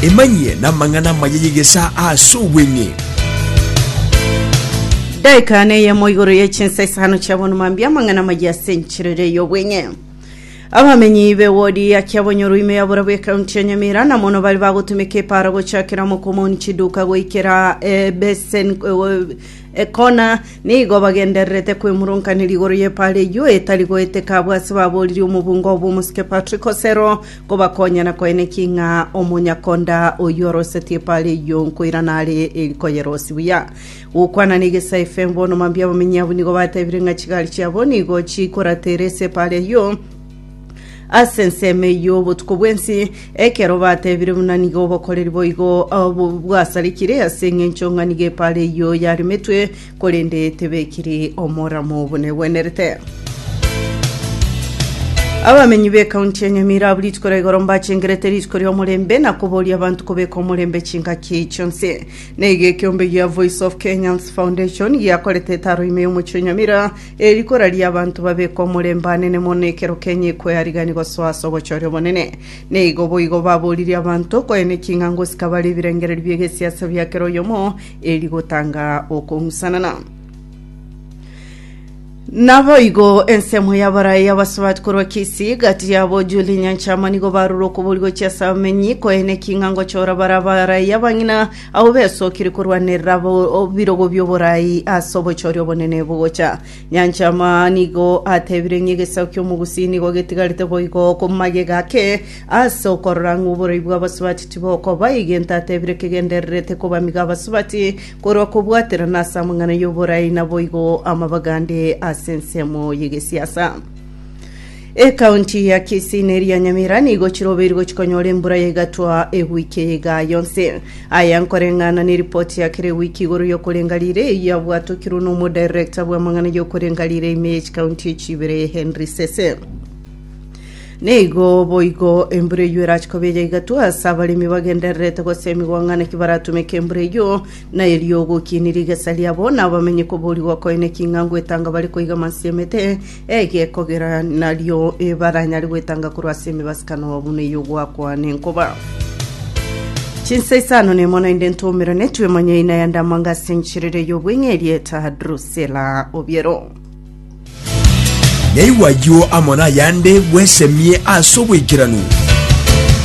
Emanyie namang'ana amaya y'egesaa ase obweng'e. Daika neyemo igoro ye chinsa isano chia bono mambi amang'ana amaya ase enchirere y'obweng'e abamenyi be wodi ya kiabonyoro ime ya borabu ekaunti ya nyamira na mono bari bagotumeka epara gochakera mokomoni chiduka goikera ebesen Ekona nigo bagendererete kwemurunkaneria igoro y'epaara eyio etari goeteka abwo ase babooriri omobunga oo bw'omosike Patrick Osero kobakonya na koenekia ng'a omonyakonda oyio orosetie epaara eyio nkoirana are eri koyerosia buya. Gokwana na egesae FM bono mambia abamenyi abwo nigo batebire ng'a chigari chiabo nigo chikoratera ase epaara eyio Ase ensemo eyio y'obotuko bw'ense, ekero bateebire buna nigo obokoreri boigo obo bwasarekire ase engencho ng'a nigo epaara eyio yaremetwe, korende tebekiri omoramo obo negwenerete. Abamenyi b'ekaunti ya Nyamira abwo rituko ria igoro mbachengerete rituko ri'omorembe na koboria abanto kobeka omorembe chingaki chionsi. Nigo ekeombe gia Voice of Kenyans Foundation giakorete etaro ime y'omochie o Nyamira Ere rikora ri'abanto babekwa omorembe anene mono ekero Kenya ekoearigania gosoa ase obochore obonene. Neigo boigo baboririe abanto koyene ching'ango chikabare ebirengererio bi'egesiasa bia kera oyomo eri gotanga okong'usanana. Naboigo ensemo y'abarai abasubati korwa Kisii, gati yabo Julie Nyanchama nigo barure okobori gochia ase abamenyi koyene ching'ango chora bare abarai abang'ina Abwo besokire korwanerera ebirogo bi'oboraai ase obochori obonene bogocha nyancha Amaa nigo atebire ng'a egesaku ki'Omogusi nigo getigarete boigo magega ake ase okorora ng'a oboraai bw'abasubati tibokoba egento atebire kegendererete kobamiga abasubati korwa kobwaterana ase amang'ana y'oboraai naboigo amabagande ase ensemo y'egesiasa. Ekaunti ya Kisii na eria Nyamira nigo chirobeirwe chikonyora embura ya egatwa ewiki eye igaa yonsi. Aya nkoreng'ana neripoti ya kera ewiki igoro y'okorenga riire eyio yabwatokirwe na omodirector bw'amang'ana y'okorenga riire ime ye chikaunti echi ibere Henry Sese. Neigo boigo embura eyio erache koba eya egatwa ase abaremi bagendererete gosemigwa ng'ana ki baratumeke embura eyio na erio ogokiini rigesa riabo na abamenyi koborigwa koene king'ango etanga bare koiga amansiamete Egekogera nario ebaranyare gwetanga korwa ase emibasikano buna eyio gwakwa nenkoba. Chinsa isano nemo naende ntomera netwe monyeina ya ndamwanga ase enchirere y'obweng'eria eta Drusela Obiero. Naigwa ayio amo nayande bwesemie ase obwaikeranu.